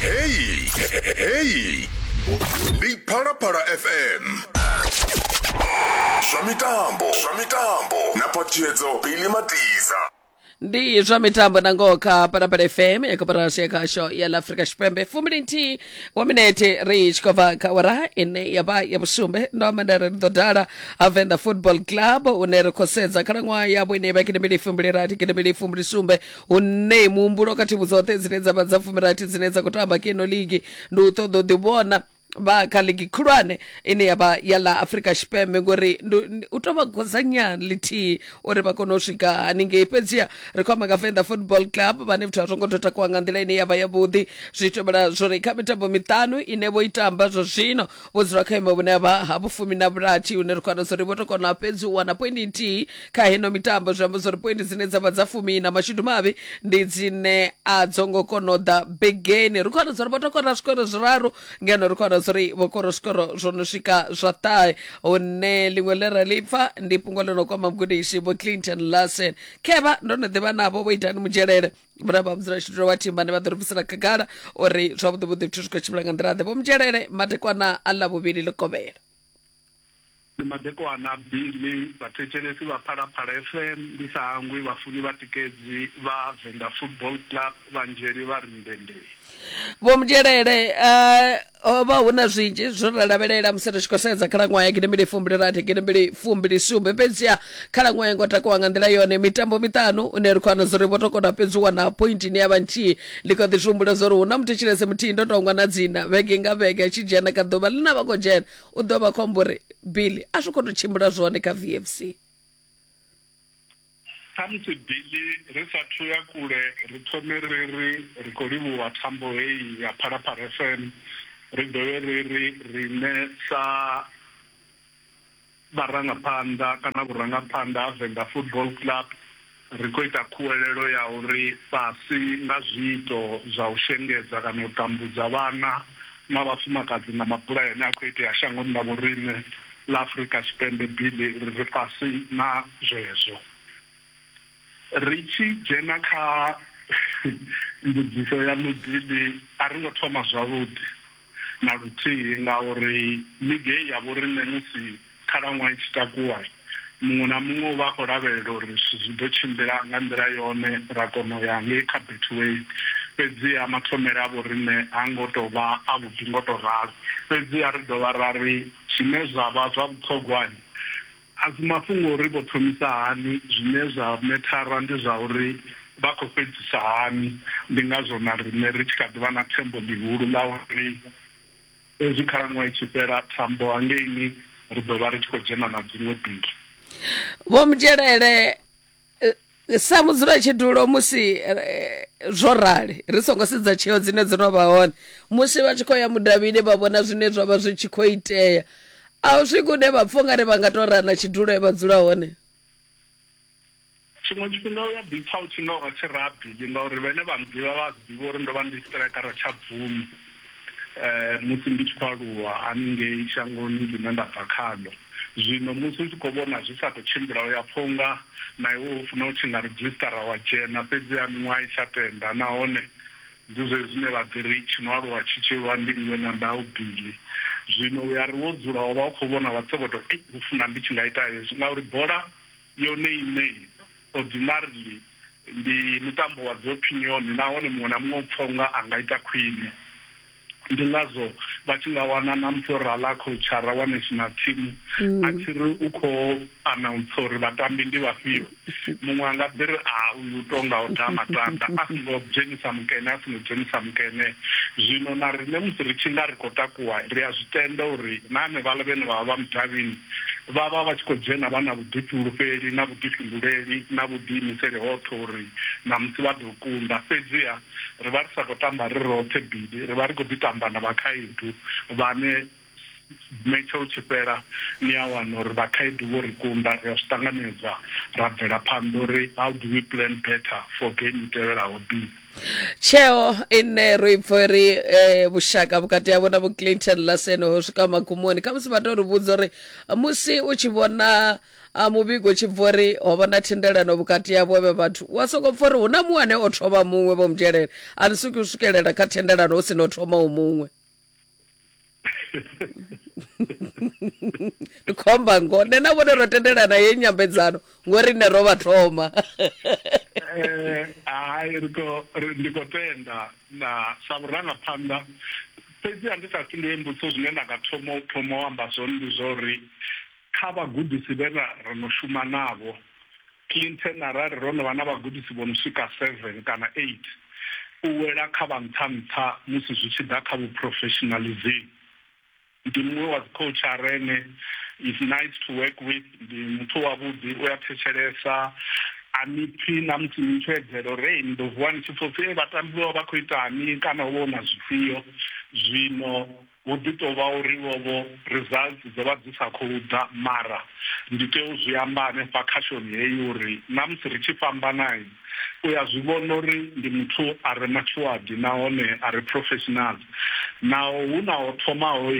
Hey, hey. Ndi Phalaphala FM. Zwa mitambo, zwa mitambo. Na phatiyedzo Billy Matiza. ndi zwa mitambo na ngoho kha parapara fm ya koporasi ya khasho ya la afrika tshipembe fumbili nthihi wa minete ri tshi khou bva kha wara ine ya vha ya vhusumbe ndo amba nda ri ri ḓo dala ha venḓa football club une ri khou sedza khalaṅwaha yavho ine ya vha kete mbili fumbili rathi kete mbili fumbili sumbe hu ṋei muhumbulo kha thimu dzoṱhe dzine dza vha dza fumirathi dzine dza khou tamba kha ino ligi ndi u ṱoḓa u ḓivhona vha kha ligi khulwane ine ya vha ya ḽa afrika tshipembe ngori ndu- ndi- u tou vha godzanya lithihi uri vha kone u swika haningei fhedziha ri khou amba nga venḓa football club vhane vhathu a zwo ngo tou takuwa nga nḓila ine ya vha yavhuḓi zwi tovhela zwori kha mitambo miṱanu ine vho i tamba zwa zwino vho dzula kha imo vhune vha ha vhufumi na vhulathi hune ri khwana zwo ri vho to kona fhedzi u wana poindi nthihi kha heno mitambo zwi amba zwo ri poindi dzine dza vha dza fumi na mashudu mavhi ndi dzine a dzo ngo kona u ḓa begeni ri khwana zwo ri vho to kona zwikoro zwiraru ngeno ri khwana zwo ri vho koro zwikoro zwo no swika zwa ṱahe hune ḽiṅwe ḽe ra ḽi pfa ndi fhungo ḽo no kwama mugudisi vho clinton larsen khevha ndo no ḓivha navho vho itani mudzhelele muraba mudzula tshithu wa thimba ne vha ḓo ri bvisela khagala uri zwavhuḓi vhuḓi zwithu zwi khou tshimbila nga nḓila ḓe vho mudzhelele madekwana a ḽa vhuvhili ḽi kovhela ndi madekwana billy vhathetshelesi vha phalaphala fm ndi sa hangwi vhafuni vhatikedzi vha venḓa football club vhanzheli vha ri ndendei vho mudzhelele uh, ho vha hu na zwinzhi zwo ra lavhelela musi ri tshi khou sedza khalaṅwaha ya gidimbili fumbili rathi gidimbili fumbili sumbe fhedziha khalaṅwaha ya ngo takuwa nga nḓila yone mitambo miṱanu une ri khou wana zori vho to kona fhedzi u wana point ine ya vha nthihi ndi kho ḓi zwi humbula zori hu na muthetshelese muthihi ndo tongwa na dzina vhege nga vhege a tshi dzhena ka ḓuvha ḽi na vha khou dzhena u ḓo vha khombo uri bili a zwi khou to tshimbila zwone kha vfc Khamusi Billy ri sa thu ya kule ri thome ri ri ri khou livhuwa thambo heyi ya Phalaphala FM, ri dovhe ri ri riṋe sa vharangaphanḓa kana vhurangaphanḓa ha Venḓa Football Club ri khou ita khuwelelo ya uri fhasi nga zwiito zwa u shengedza kana u tambudza vhana na vhafumakadzi na mabulayo ane a khou itea shangoni ḽa vhoriṋe ḽa Afrika Tshipembe, Billy ri ri fhasi na zwezwo. Ri tshi dzhena kha mbudziso yaṋu Billy, a ri ngo thoma zwavhuḓi na luthihi ngauri ligi heyi ya vhoriṋe musi Khalaṅwaha i tshi takuwa, muṅwe na muṅwe u vha a khou lavhelela uri zwithu zwi ḓo tshimbila nga nḓila yone ra kona u ya ngei kha Betway. Fhedziha mathomele a vhoriṋe ha ngo tou vha avhuḓi ngo tou ralo. Fhedziha ri dovha ra ri, Zwine zwa vha zwa vhuṱhogwa a si mafhungo a uri vho thomisa hani, zwine zwa methara ndi zwa uri vha khou fhedzisa hani. Ndi ngazwo na riṋe ri tshi kha ḓi vha na thembo ḽihulu ḽa uri. Hezwi khalaṅwaha i tshi fhela, thambo hangeini ri ḓo vha ri tshi khou dzhena na dziṅwe biki. Vho Mudzhelele, eh, sa mudzulatshidulo musi eh, zwo rali ri songo sedza tsheo dzine dzo no vha hone musi vha tshi khou ya mudavhini vha vhona zwine zwa vha zwi tshi khou itea a u swiki une vha pfha ungari vha nga tou rana tshidulo e vha dzula hone Tshiṅwe tshifhinga u a ḓipfa u tshi nga u lwa tshirabili ngauri vhane vha nnḓivha vha a zwi ḓivha uri ndo vha ndi siṱiraikara tsha bvumo musi ndi tshi khou aluwa haningei shangoni ḽine nda bva khaḽo. Zwino musi u tshi khou vhona zwi sa khou tshimbila, u a pfa u nga na iwe wo funa u tshi nga redzhisiṱara wa dzhena. Fhedziha miṅwaha i tsha tenda, nahone ndi zwezwi zwine vha ḓi ri, Tshi no aluwa tshi tshi lwa ndi nngwe na ndau, Billy. Zwino u a ri wo dzula wa vha u khou vhona wa tsokotwa, Eish, ho funa ndi tshi nga ita hezwi, ngauri bola. yone iṋe. Ordinarily, ndi mutambo wa dziopinioni nahone muṅwe na muṅwe u pfa u nga a nga ita khwine. Ndi ngazwo vha tshi nga wana na musi o rala khoutshara wa national team a tshi ri u khou anauntsha uri vhatambi ndi vhafhio, muṅwe a nga ḓi ri, A, uyu u tou nga o daha matanda, a songo dzhenisa mukene, a songo dzhenisa mukene. Zwino na riṋe musi ri tshi nga ri khou takuwa, ri a zwi tenda uri na henevhaḽa vhane vha vha vha mudavhini vha vha vha tshi khou dzhena vha na vhuḓifhulufheli na vhuḓifhinduleli na vhuḓiimiseli hoṱhe uri ṋamusi vha ḓo kunda. Fhedziha ri vha ri sa khou tamba ri roṱhe bili, ri vha ri khou ḓi tamba na vhakhaedu vhane metshe u tshi fhela ni a wana uri vhakhaedu vho ri kunda. Ri a zwi ṱanganedza ra bvela phanḓa uri how do we plan better for game i tevhelaho. Bi. tsheo ine ro i pfa uri eh, vhushaka vhukati havho na vho clinton lasen ho swika magumoni kha musi vha tou ri vhudza uri musi u tshi vhona ah, muvhigo u tshi bva uri ho vha na thendelano vhukati havho vhe vhathu wa sokou pfa uri hu na muṅwe ane o thoma muṅwe vho mu dzhelela a ni swiki u swikelela kha thendelano hu si no thomaho muṅwe ndi khomba ngo nṋe na vhone ro tendelana ye nyambedzano ngori nṋe ro vha thoma Eh, hai ri khou- ri- ndi khou tenda na sa vhurangaphanḓa fhedzi a ndi sa fhindule mbudziso zwine nda nga thoma u thoma u amba zwone ndi zwa uri kha vhagudisi vhe ra ro no shuma navho Clinton, Arali ro no vha na vhagudisi vho no swika seven kana eight, u wela kha vha nṱha-nṱha musi zwi tshi ḓa kha vhuphurofeshinaḽizimu. Ndi muṅwe wa dzikhoutsha a re ne, is nice to work with, ndi muthu wavhuḓi, u a thetshelesa, a ni pfi na musi ni tshi edzela uri, Hei, ni ḓo vuwa ni tshi pfa u pfi, Hei, vhatambi vho vha vha khou itani kana ho vha hu na zwifhio. Zwino Hu ḓi tou vha uri vho-vho results dzo vha dzi sa khou ḓa, mara ndi tea u zwi amba hanefha kha shoni heyi uri na musi ri tshi fhambana, u ya zwi vhona uri ndi muthu a re matshuwaḓi nahone a re professional. Naho hu na ho thomaho,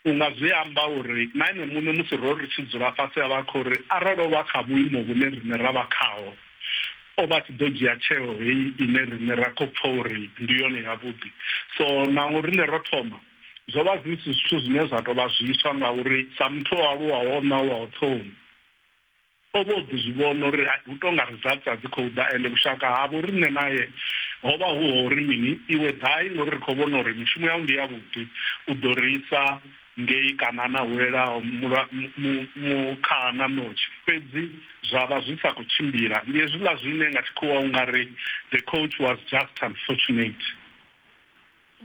u nga zwi amba uri na ene muṋe musi ro ri tshi dzula fhasi a vha a khou ri arali o vha kha vhuimo vhune riṋe ra vha khaho, o vha a tshi ḓo dzhia tsheo heyi ine riṋe ra khou pfa uri ndi yone yavhuḓi. So naho riṋe ro thoma, zwo vha zwi si zwithu zwine zwa tou vha zwiswa ngauri sa muthu o aluwaho o ṋauwaho ṱhohoni, o vha o ḓi zwi vhona uri hai hu tou nga results a dzi khou ḓa ende vhushaka ha vho riṋe nae ho vha hu ha uri mini, iwe ḓai ngori ri khou vhona uri mishumo yau ndi yavhuḓi, u ḓo ri isa Ngei Kanana hu lelaho mukhaha na ṋotshi, fhedzi zwa vha zwi sa khou tshimbila. Ndi hezwiḽa zwine nga Tshikhuwa u nga ri, The coach was just unfortunate.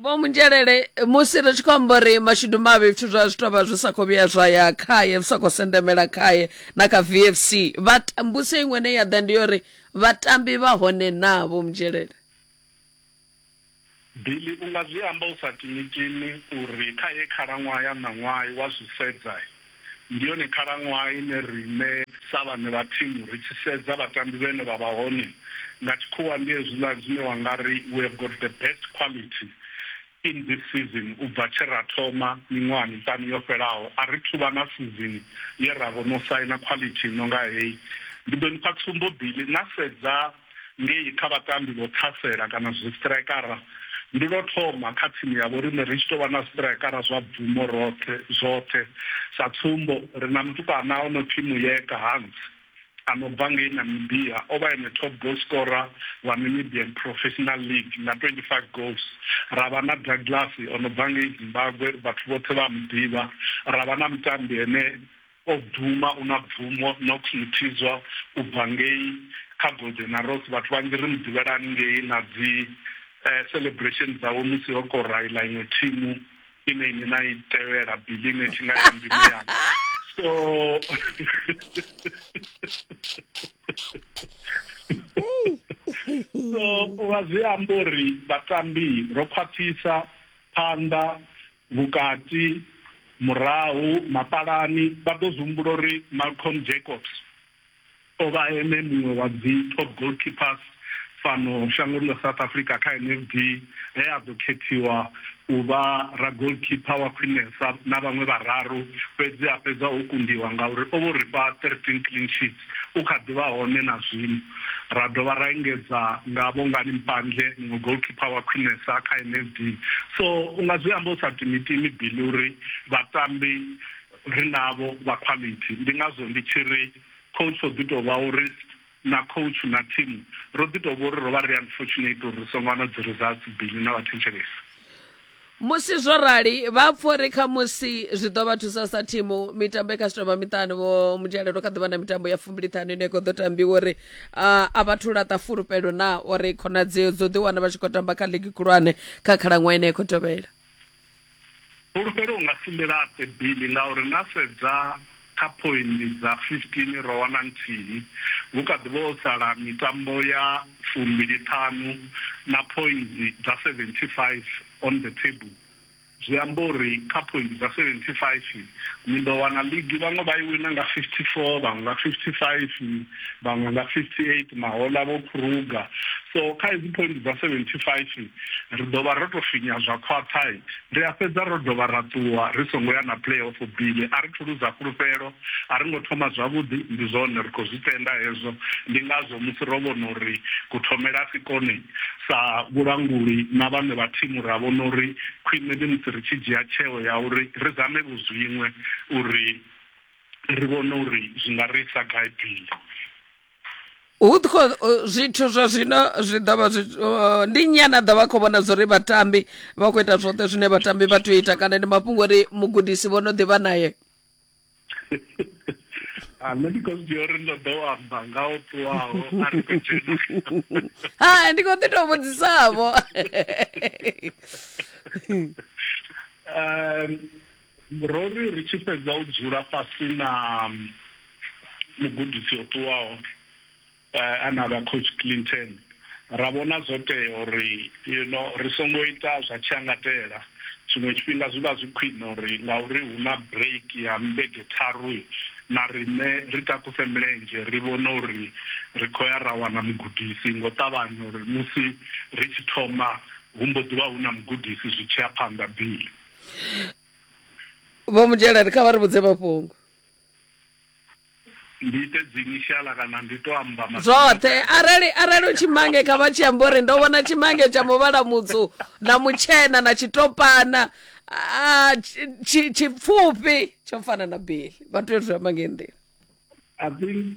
Vho Munzhelele, Musi ri tshi khou amba uri mashudu mavhi zwithu zwa zwi tou vha zwi sa khou vhuya zwa ya khae, zwi sa khou sendemela khae na kha VFC. Vha ta, mbudziso iṅwe ine ya ḓa ndi ya uri vhatambi vha hone naa, Vho Munzhelele? Billy, U nga zwi amba u sa timitimi uri kha heyi khalaṅwaha ya ṋaṅwaha, wa zwi sedza, ndi yone khalaṅwaha ine riṋe sa vhaṋe vha thimu ri tshi sedza vhatambi vhane vha vha hone, nga tshikhuwa ndi hezwiḽa zwine wa nga ri we have got the best quality in this season u bva tshe ra thoma miṅwaha miṱanu yo fhelaho. A ri thu vha na sizini ye ra vho no saina quality i no nga heyi. Ndi ḓo ni fha tsumbo, Billy, na sedza. ngei kha vhatambi vho ṱhasela kana zwistraikara. Ndi lwo thoma kha thimu ya vhoriṋe ri tshi tou vha na zwistraikara zwa bvumo roṱhe zwoṱhe. Sa tsumbo, ri na mutukana o no pfi Muyeka Hans a no bva ngei Namibia. O vha ene top goal scorer wa Namibian Professional League nga 25 goals. Ra vha na Douglas o no bva ngei Zimbagwe, vhathu vhoṱhe vha a mu ḓivha. Ra vha na mutambi ane O bvuma, u na bvumo, Nox Mthizwa u bva ngei kha Golden Arrows. Vhathu vhanzhi ri mu ḓivhela haningei na dzi celebration dzawe musi ho kora iḽa iṅwe thimu ine inwi na i tevhela, Billy ine tshi nga ya mbilu yanga. So so u vha zwi amba uri vhatambi ro khwaṱhisa phanḓa. Vhukati, murahu, mapalani, vha ḓo zwi humbula uri Malcolm Jacobs o vha ene muṅwe wa dzi top goalkeepers fhano shangoni ḽa South Africa kha NFD he a ḓo khethiwa u vha ragoalkeeper wa khwinesa na vhaṅwe vhararu fhedzi a fhedza o kundiwa ngauri o vho ri fha 13 clean sheets. u kha ḓi vha hone na zwino. Ra dovha ra engedza nga Bongani Mpandle, muṅwe goalkeeper wa khwinesa kha NSD. So u nga zwi amba u sa timitimi Billy uri vhatambi ri navho vha quality. Ndi ngazwo ndi tshi ri coach o ḓi tou vha u risk na coach na thimu ro ḓi tou vha uri ro vha ri unfortunate uri ri songo wana dzi results Billy na vhathetshelesi. Musi zwo rali, vha pfa uri khamusi zwi ḓo vha thusa sa thimu. Mitambo i kha zwitovha miṱanu, vho Mudzhalelo kha ḓi vha na mitambo ya fumbiliṱhanu ine khou ḓo tambiwa uri ah, a vha thu laṱa fulufhelo na uri khonadzeo dzo ḓiwana vha tshi khou tamba kha ligi khulwane kha khalaṅwaha ine ya khou tevhela. Fulufhelo u nga si ḽi laṱe Billy ngauri na sedza Kha phoindi dza 15 ro wana nthihi, hu kha ḓi vha ho sala mitambo ya fumbili ṱhanu na phoindi dza 75 on the table. Zwi amba uri kha phoindi dza 75 ni ḓo wana ligi vhaṅwe vha i wina nga 54, vhaṅwe nga 55, vhaṅwe nga 58, Mahola, Vho Kruger. So kha hedzi phoindi dza 75 Ri ḓo vha ro tou finya zwa khwaṱha, ri a fhedza ro dovha ra ṱuwa ri songo ya na playoff. Billy, A ri thu luza fhulufhelo, a ri ngo thoma zwavhuḓi. Ndi zwone, ri khou zwi tenda hezwo. Ndi ngazwo musi ro vhona uri kuthomele a si kone, sa vhulanguli na vhaṋe vha thimu ra vhona uri khwine ndi musi ri tshi dzhia tsheo ya uri ri zame-vho zwiṅwe uri ri vhone uri zwi nga ri isa gai. Billy. hu tshi khou uh, zwithu zwa zwino zwi ḓo vha zwi- uh, ndi nnyi ane a ḓo vha khou vhona zwo ri vhatambi vha khou ita zwoṱhe zwine vhatambi vha tea u ita kana ndi mafhungo uri mugudisi vho no ḓivha naye a nṋe ndi khou zwidzia uri ndo ḓo amba nga o ṱuwaho a ri khou dzhena ha ndi khou ḓi tou vhudzisavho um Ro ri ri tshi fhedza u dzula fhasi na mugudisi o ṱuwaho ane a vha Coach Clinton, ra vhona zwo tea uri ri songo ita zwa tshiangatela. Tshiṅwe tshifhinga zwi vha zwi khwine uri ngauri hu na bureiki ya vhege tharu, na riṋe ri takuse milenzhe ri vhone uri ri khou ya ra wana mugudisi nga u ṱavhanya uri musi ri tshi thoma hu mbo ḓi vha hu na mugudisi zwi tshi ya phanḓa. Billy. vho mudzhiela kha vha ri vhudze mafhungo ndi ite dzinishala kana ndi to amba ma- zwoṱhe arali arali u tshimange kha vha tshi amba uri ndo vhona tshimange tsha muvhala mutsu na mutshena na tshitopana ah, tshi- tshi- tshipfufhi tsho fana na beli vha tea u zwi amba ngeyi nḓila i think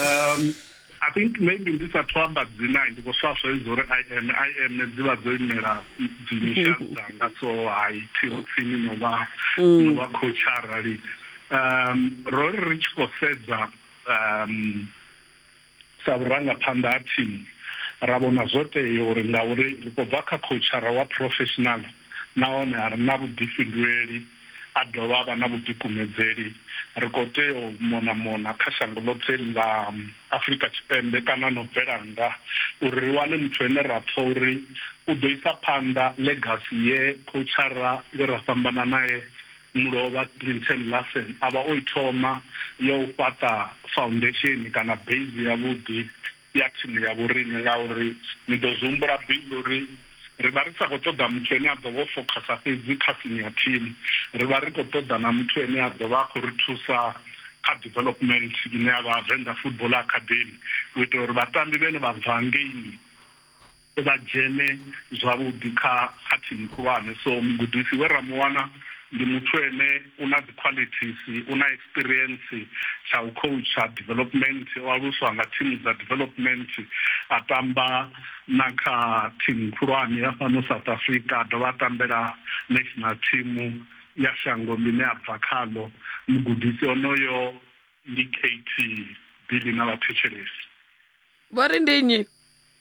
um i think maybe ndi sa thu amba dzina ndi khou swaswa idzo uri i am i am dzi vha dzo imela dzinisha dzanga so hai thiho tsini no vha mm. no vha khotsha arali um ro ri ri tshi khou sedza um sa vhurangaphanḓa ha thimu ra vhona zwo tea uri ngauri ri khou bva kha khotshara wa professional nahone a ri na vhuḓifhinduleli a dovha a vha na vhuḓikumedzeli. Ri khou tea u mona-mona kha shango ḽoṱhe ḽa Afrika Tshipembe kana no bvela nnḓa uri ri wane muthu ane ra pfa uri u ḓo isa phanḓa ḽegasi ye khoutshara we ra fhambana nae mulovha Clinton Larsen a vha o i thoma ya u fhaṱa faundesheni kana beizi yavhuḓi ya tsimu ya vhoriṋe ngauri ni ḓo zwi humbula Bill uri ri vha ri sa khou ṱoḓa muthu ane a ḓo vha o fokhasa fhedzi kha simu ya thimu, ri vha ri khou ṱoḓa na muthu ane a ḓo vha a khou ri thusa kha development ine ya vha Venḓa Football Academy u itela uri vhatambi vhane vha bva ngeini. vha dzhene zwavhuḓi kha kha thimu khulwane. So mugudisi we ra mu wana ndi muthu ene u na dzi qualities, u na experience tsha u khoutsha development, o aluswa nga thimu dza development, a tamba na kha thimu khulwane ya fhano South Africa, a dovha a tambela national team ya shango ḽine a bva khaḽo. Mugudisi onoyo ndi KT Billy na vhathetshelesi. Vho ri ndi nnyi?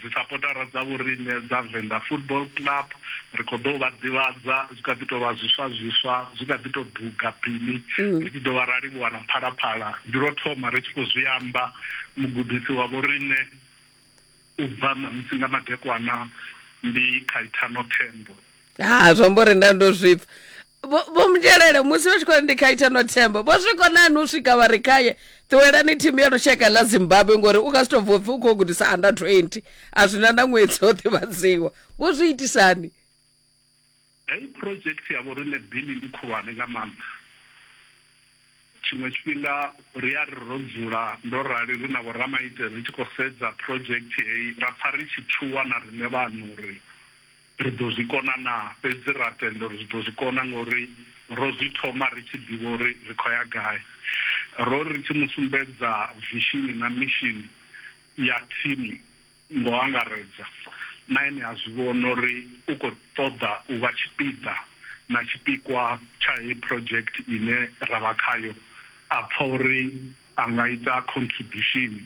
Dzisapotara dza vhoriṋe dza Venḓa Football Club ri khou ḓou vha ḓivhadza zwi kha ḓi tou vha zwiswa zwiswa zwi kha ḓi tou duga bini ri tshi dovha ra livhuwa na Phalaphala ndi lwo thoma ri tshi khou zwi amba mugudisi wa vhoriṋe u bva ṋamusi nga madekwana ndi Khaithano Thembo. Ha zwi amba uri nda ndo zwipfa vho vho mudzhelele musi vha tshi khou ri ndi kha ita no themba vho zwi konani u swika vha ri khaye ṱuwelani thimu ya lushaka ḽa zimbabwe ngori u nga si tou bva upfi u khou gudisa under 20 a zwina na ṅwedzi o ḓivhadziwa vho zwi itisani heyi project ya vho riṋe bili ndi khulwane nga maanḓa tshiṅwe tshifhinga ri a ri ro dzula ndo rali ri na vhoramaitele ri tshi khou sedza project heyi ra pfa ri tshi tshuwa na riṋe vhaṋe uri Ri ḓo zwi kona naa? Fhedzi ra tenda uri ri ḓo zwi kona ngauri ro zwi thoma ri tshi ḓivha uri ri khou ya gai. Ro ri ri tshi mu sumbedza vishini na mishini ya thimu nga u angaredza, na ene a zwi vhona uri u khou ṱoḓa u vha tshipiḓa na tshipikwa tsha heyi phurojekthi ine ra vha khayo, a pfa uri a nga ita khontribushini.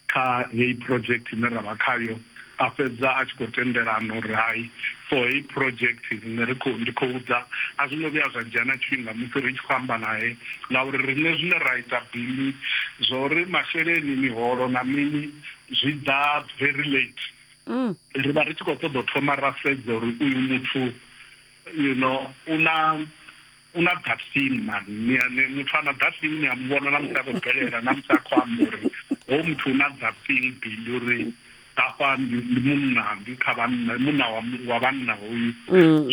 kha heyi project ine ra vha khayo, a fhedza a tshi khou tendelana uri hai, for heyi project riṋe ri khou, ndi khou ḓa. A zwo ngo vhuya zwa dzhia na tshifhinga musi ri tshi khou amba nae ngauri riṋe zwine ra ita bili zwa uri masheleni, miholo na mini zwi ḓa very late. Ri vha ri tshi khou ṱoḓa u thoma ra sedza uri uyu muthu you know u na. U na ḓatsini man, ni a ni muthu a na ḓatsini ni a mu vhona na musi a khou bvelela, na musi a khou amba uri hoyu muthu u na ḓatsini Billy uri hafha ndi ndi munna, ndi kha vhanna, munna wa wa vhanna hoyu.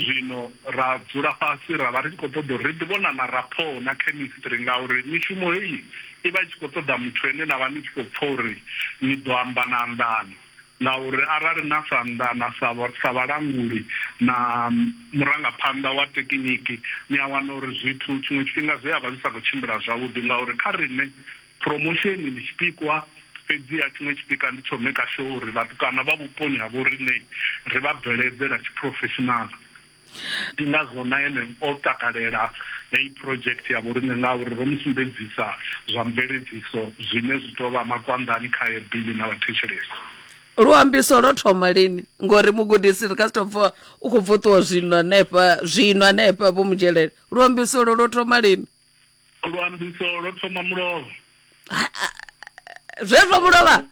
Zwino ra dzula fhasi ra vha ri tshi khou ṱoḓa uri ri ḓi vhona na rapport na chemistry ngauri mishumo heyi i vha i tshi khou ṱoḓa muthu ane na vha ni tshi khou pfha uri ni ḓo amba na anḓana. ngauri arali na sa anḓana sa sa vhalanguli na murangaphanḓa wa tekiniki ni a wana uri zwithu tshiṅwe tshifhinga zwi a vha zwi sa khou tshimbila zwavhuḓi ngauri kha riṋe promotion ndi tshipikwa fhedziha tshiṅwe tshipika ndi tsho maker sure uri vhatukana vha vhuponi ha vho riṋe ri vha bveledzela tshiphurofeshinala. Ndi ngazwo na ene o takalela heyi phurodzhekithe ya vhoriṋe ngauri ro mu sumbedzisa zwa mveledziso zwine zwi tou vha makwanḓani khae Billy na vhathetshelesi. Luambiso lwo thoma lini? Ngori mugudisi ri nga si tou pfa u khou bva u ṱuwa zwino hanefha, zwino hanefha, Vho Mudzhelele. Luambiso lwo lwo thoma lini? Luambiso lwo thoma mulovha. Ha, ha, zwezwo mulovha?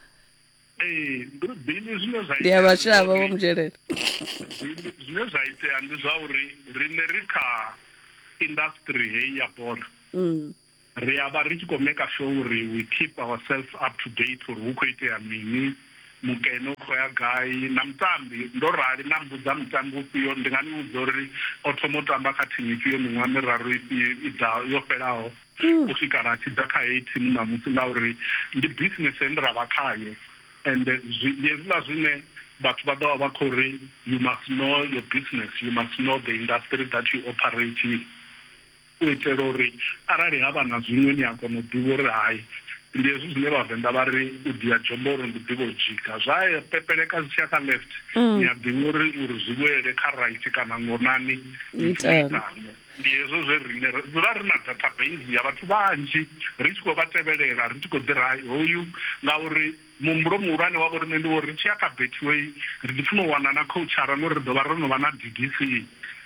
ee bivhili zwine zwa ndi a vhashavha vho mudzhelela zwine zwa itea ndi zwa uri riṋe ri kha industry heyi ya bola mm. ri a vha ri tshi khou maker sure uri we keep ourselves up to date uri hu khou itea mini mukene u khou ya gai na mutambi ndo rali na mbudza mutambi ufhio ndi nga ni vhudza uri o thoma u tamba kha thimu ifhio miṅwaha miraru ifhio i ḓa yo fhelaho u swika ra tshi ḓa kha heyi thimu ṋamusi ngauri ndi bisinese ine ra vha khayo and ndi hezwiḽa zwine vhathu vha ḓo vha vha khou ri you must know your business, you must know the industry that you operate in u itela uri arali ha vha na zwiṅwe ni a kona u ḓivha uri hai. Ndi hezwi zwine Vhavenḓa vha ri u dia dzhombo uri ndi ḓivha u dzhika. Zwa pepeleka zwi tshi ya kha left ni a ḓivha uri uri zwi vhuelele kha right kana ngonani ni tshi ita. Ndi hezwo zwe riṋe ra dzula ri na dathabeisi ya vhathu vhanzhi ri tshi khou vha tevhelela ri tshi khou ḓi ri hoyu ngauri muhumbulo muhulwane wa vhoriṋe ndi wo uri ri tshi ya kha Betway ri ḓi funa u wana na khoutshaara ngori ri ḓo vha ro no vha na DDC.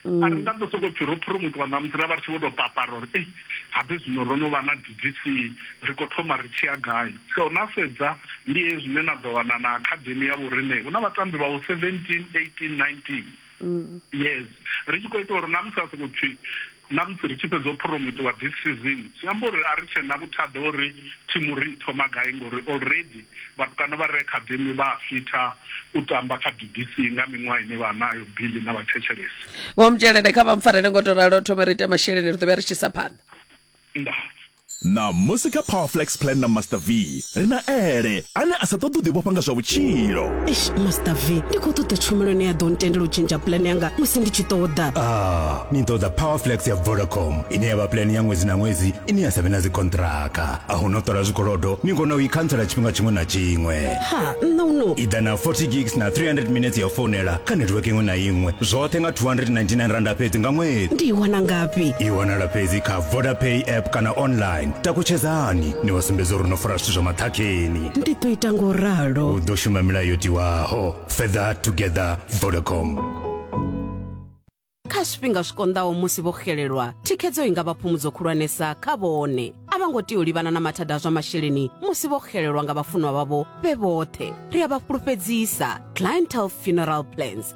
A ri nga ḓo sokou pfi ro phuromothiwa ṋamusi ra vha ri tshi vho tou papara uri ei habe zwino ro no vha na DDC ri khou thoma ri tshi ya gai. So na sedza ndi hezwi zwine na ḓo wana na akhademi ya vhoriṋe hu na vhatambi vhaho 17, 18, 19. mm. yes ri tshi khou ita uri na musi a soko pfi na musi ri tshi fhedza u promotiwa this season zwi amba uri a ri tshe na vhuthada uri thimu ri thoma gai ngori already vhatukana vha re academy vha fitha u tamba kha bbc nga miṅwaha ine vha nayo bili na vhathetshelesi vho mtshelede kha vha mpfarele ngo to ralo thome ri ite masheleni ri ḓo vha ri tshi sa phanḓa nda Ṋamusi kha Power Flex Plan na Master V, ri na Ele, ane a sa ṱoḓi u ḓivhofha nga zwa vhutshilo. Eish, Master V, ndi khou ṱoḓa tshumelo ine ya ḓo ntendela u tshentsha puḽane yanga musi ndi tshi ṱoḓa. Ah, ni ṱoḓa Power Flex ya Vodacom, ine ya vha puḽane ya ṅwedzi na ṅwedzi ine ya sa vhe na dzikonṱiraka. A hu na u ṱola zwikolodo, ni kona u i khantsela tshifhinga tshiṅwe na tshiṅwe. Ha, nṋe u no. I ḓa na 40 gigs na 300 minetse ya u founela kha netiweke iṅwe na iṅwe, zwoṱhe nga R299 fhedzi nga ṅwedzi. Ndi i wana ngafhi? I wanala fhedzi kha. vodapay app kana online takutshedzani ni vha sumbedza uri no fara zwithu zwa maṱhakheni ndi ḓo ita ngo ralo u ḓo shuma milayo yo tiwaho fetha together vodacom kha zwifhinga zwi konḓaho musi vho xelelwa thikhedzo i nga vha phumudzo khulwanesa kha vhone a vha ngo tea u livhana na mathada a zwa masheleni musi vho xelelwa nga vhafunwa vhavho vhe vhoṱhe ri a vha fhulufhedzisa clientele funeral plans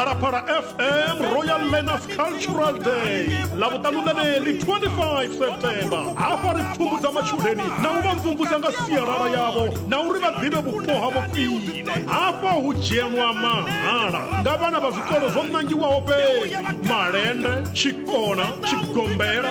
phalaphala fm royal learners cultural day lavhuṱanu ḽeneḽi 25 september hafha ri pfumbudza matshudeni na u vha mvumvusa nga sialala yavho na uri vha ḓivhe vhupo havho khwine hafha hu dzhenwa mahala nga vhana vha zwikolo zwo nangiwaho fhedzi malende tshikona tshigombela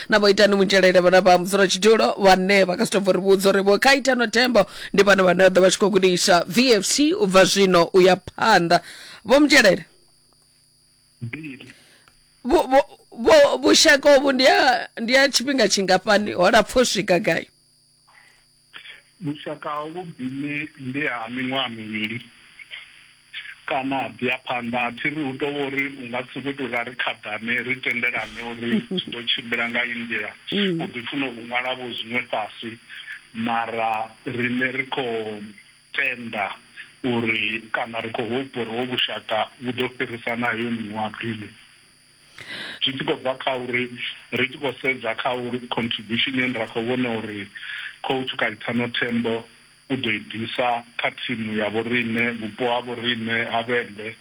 na vho itani mutshelele vhana vha mudzula tshidulo vhane vha nga si tou bva ri vhudza uri vho kha itano thembo ndi vhana vhane vha ḓo vha tshi khou gudisa vfc u bva zwino u ya phanḓa vho mutshelele mbili vhu- vhu- vhu- vhushaka uvhu ndi ha ndi ha tshifhinga tshingafhani ho lapfa u swika gai Vhushaka ha vhuvhili ndi ha miṅwaha mivhili kana ha ḓi ya phanḓa. A thi ri hu tou vha uri u nga si sokou tou ra ri khaḓane ri tendelane uri zwi ḓo tshimbila nga iyi nḓila. U ḓi funa u ṅwala-vho zwiṅwe fhasi mara riṋe ri khou tenda uri kana ri khou hopba uri hovhu vhushaka vhu ḓo fhirisa na heyo miṅwaha mivhili. zwi tshi khou bva kha uri ri tshi khou sedza kha uri contribution ye ra khou vhona uri coach Kaitano Tembo u ḓo i ḓisa kha thimu ya vhoriṋe, vhupo ha vhoriṋe ha Vhembe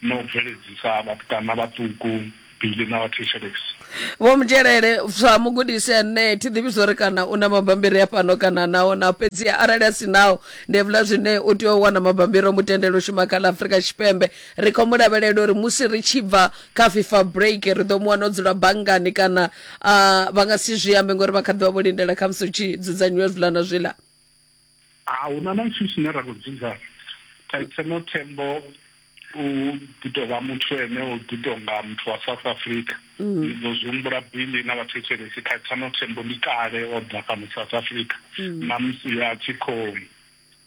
na u bveledzisa vhatukana vhaṱuku Billy na vhathetshelesi. Vho Mudzhelele, sa mugudisi ane thi ḓivhi zwo ri kana u na mabambiri a fhano kana naho na fhedzi arali a si nao ndi hevhuḽa zwine u tea u wana mabambiri o mu tendela u shuma kha ḽa Afrika Tshipembe ri khou mu lavhelela uri musi ri tshi bva kha fifa break ri ḓo mu wana o dzula banngani kana uh, vha nga si zwi ambe ngori vha kha ḓivha vho lindela kha musi hu tshi dzudzanyiwa zwiḽa na zwiḽa a hu na na tshithu tshine ra khou dzudza thetseno thembo u ḓi tou vha muthu ene u ḓi tou nga muthu wa south africa mm. ndi ḓo zwi humbula bili na vhathetshelesi thetseno thembo ndi kale o ḓa fhano south africa mm. na musi a tshi khou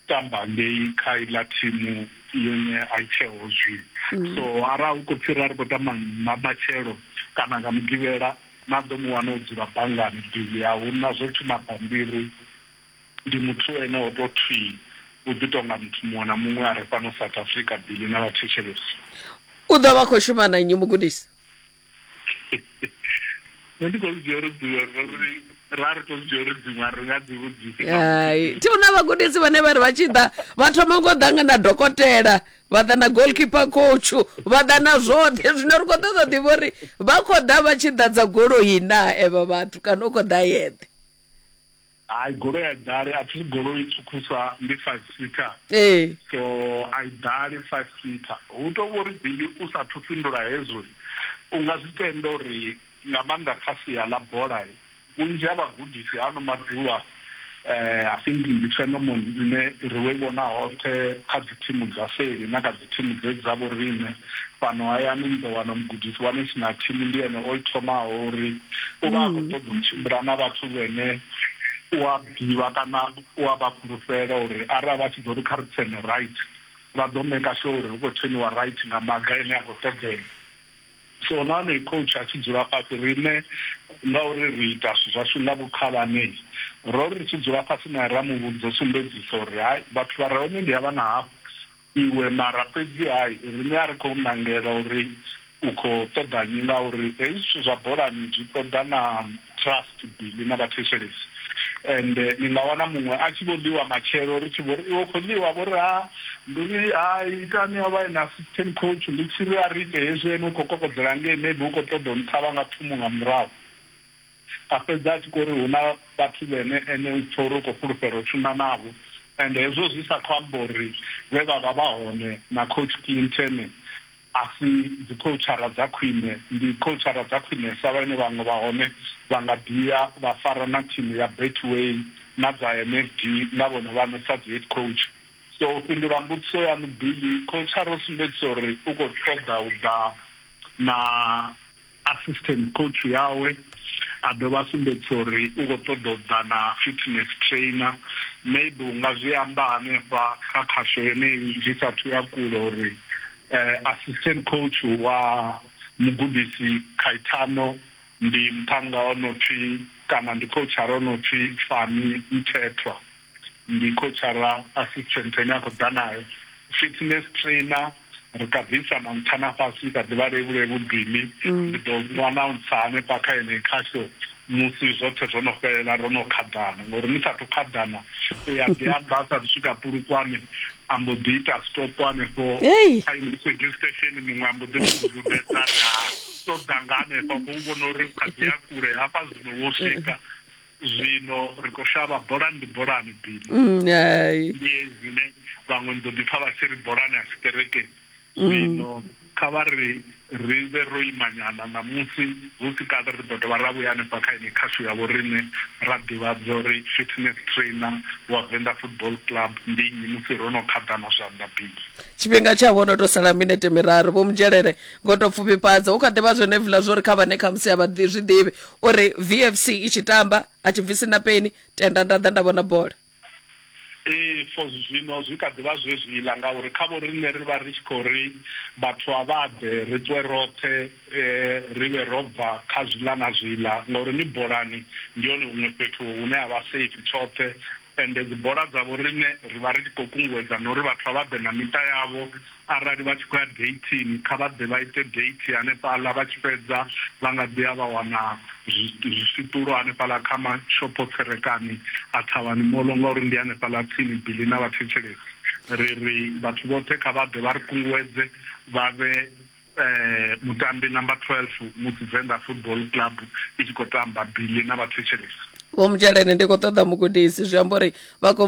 tamba ngei kha iḽa thimu yone a i tsheho zwino so arali hu khou pfhi ra ri khou tamba nga matshelo kana nga mugivhela na ḓo mu wana o dzula banngani bivhi a hu na zwo thoma bammbiri ndi muthu ene o to thwi u ḓi tonga muthu muṅwe na muṅwe a re fhano South Africa bili na vha thetshelesi. U ḓo vha khou shuma na nnyi mugudisi? nṋe ndi khou dzhia uri dziṅwe ngori ra ri to dzhia uri dziṅwe ri nga dzi vhudzisi hai thi una vhagudisi vhane vha ri vha tshi ḓa vha thoma ngo ḓa nga na dokotela vha ḓa na goalkeeper coach vha ḓa na zwoṱhe zwino ri khou ṱoḓa ḓivha uri vha khou ḓa vha tshi ḓadza goloi na evho vhathu kana u khou ḓa yeṱhe Hai goloi a i ḓali a thi goloi ṱhukhusa ndi five seater ee. so a i ḓali five seater hu to vhori bili u sathu fhindula hezwo u nga zwi tenda uri nga maanḓa kha sia ḽa bola vhunzhi ha vhagudisi ha ano maḓuvha i think ndi phenomone ine ri vho i vhona hoṱhe kha dzi thimu dza seli na kha Thimu dze dza vhoriṋe fhano hayani ni ḓo wana mugudisi wa national thimu ndi ene o i thomaho uri u vha a khou ṱoḓa u tshimbila na vhathu vhene u a ḓivha kana u a vha fhulufhela uri arali vha tshi ḓo ri kha ri tsene right vha ḓo maker sure uri hu khou tseniwa right nga maga ane a khou ṱoḓea. So na honoyu coach a tshi dzula fhasi riṋe ngauri ri ita zwithu zwashu nga vhukhalanei ro ri tshi dzula fhasi nae ra mu vhudza u sumbedzisa uri hai vhathu vha re hone ndi havha na havha. iwe mara fhedzi hai riṋe a ri khou nangela uri u khou ṱoḓa nnyi ngauri hezwi zwithu zwa bolani zwi ṱoḓa na trust Billy na vhathetshelesi ende ni nga wana muṅwe a tshi vho ḽiwa matshelo ri tshi vho ri iwe u khou ḽiwa vho ri ha ndi ri hai itani o vha e na assistant coach ndi tshi ri a ri ite hezwi ene u khou kokodzela ngei maybe u khou ṱoḓa u nṱhavha nga thumu nga murahu. A fhedza a tshi khou ri, Hu na vhathu vhene ene u pfa uri u khou fhulufhela u shuma navho. Ende hezwo zwi sa khou amba uri vhe vha vha vha hone na Coach Clinton a si dzikhoutshara dza khwine. Ndi khoutshara dza khwinesa vhane vhaṅwe vha hone vha nga ḓi ya vha fara na thimu ya Betway na dza NFD nga vhone vhaṋe sa dzihead coach. So u fhindula mbudziso yaṋu Billy, khoutshara u sumbedzisa uri u khou ṱoḓa u ḓa na. Assistant coach yawe a dovha a sumbedzisa uri u khou ṱoḓa u ḓa na fitness trainer, maybe u nga zwi amba hanefha kha khasho yeneyi zwi sa athu ya kule uri assistant coach wa mugudisi Caetano ndi muṱhannga o no pfi kana ndi khouchara o no pfi Fani Mthethwa. ndi khotshara assistant ane a khou ḓa nayo fitness trainer ri kha bvisa na nṱha na fhasi kha ḓivha levhule vhudini mm. ndi ḓo mu announce hanefha kha ene kha show musi zwoṱhe zwo no fhelela ro no khaḓana ngori ni sathu khaḓana u ya ḓi amba a sathu swika pulukwane a mbo ḓi ita stop hanefho kha radio station muṅwe a mbo ḓi mududedza ri ha ṱoḓa nga hanefha khou vhona uri kha ḓi ya kule hafha zwino wo swika Zwino ri khou shavha, bolani ndi bolani, Billy. Hai. Ndi hezwi, ne? Vhaṅwe ni ḓo ḓipfa vha tshi ri, Bolani a si kerekeni. Zwino kha vha ri ri vhe ro imanyana ṋamusi, hu si kale ri ḓo dovha ra vhuya hanefha kha yeneyi khasho ya vhoriṋe ra ḓivhadza uri fitness trainer wa Venda Football Club ndi nnyi musi ro no khaḓana zwanḓa, Billy. Tshifhinga tsha vho no tou sala minete miraru. Vho Mudzhelele, ngo tou pfufhifhadza, Hu kha ḓi vha zwenevhiḽa zwo ri kha vhane khamusi a vha zwi ḓivhi, uri vfc i tshi tamba a tshi bvisi na peni tenda nda ḓa nda vhona bola ee for zwino zwi kha ḓivha zwezwiḽa ngauri kha vho riṋe ri vha ri tshi khou ri vhathu a vha ḓe ri ṱwe roṱhe um ri vhe ro bva kha zwiḽa na zwiḽa ngauri ni bolani ndi hone huṅwe fhethu hune ha vha safe tshoṱhe ende dzi bola dzavho riṋe ri vha ri tshi khou kunguwedza na uri vhathu a vha ḓe na miṱa yavho Arali vha tshi khou ya deithini, kha vha ḓe vha ite deithi hanefhaḽa, vha tshi fhedza vha nga ḓi ya vha wana zwiswiṱulo hanefhaḽa kha mashopho-tserekani a Thavhani Mall ngauri ndi hanefhaḽa tsini bili na vhathetshelesi. Ri ri vhathu vhoṱhe kha vha ḓe vha ri kunguwedze vha vhe mutambi namba 12 musi Venḓa Football Club i tshi khou tamba bili na vhathetshelesi. Vho Mutsheleni, Ndi khou ṱoḓa mugudisi, zwi amba uri vha khou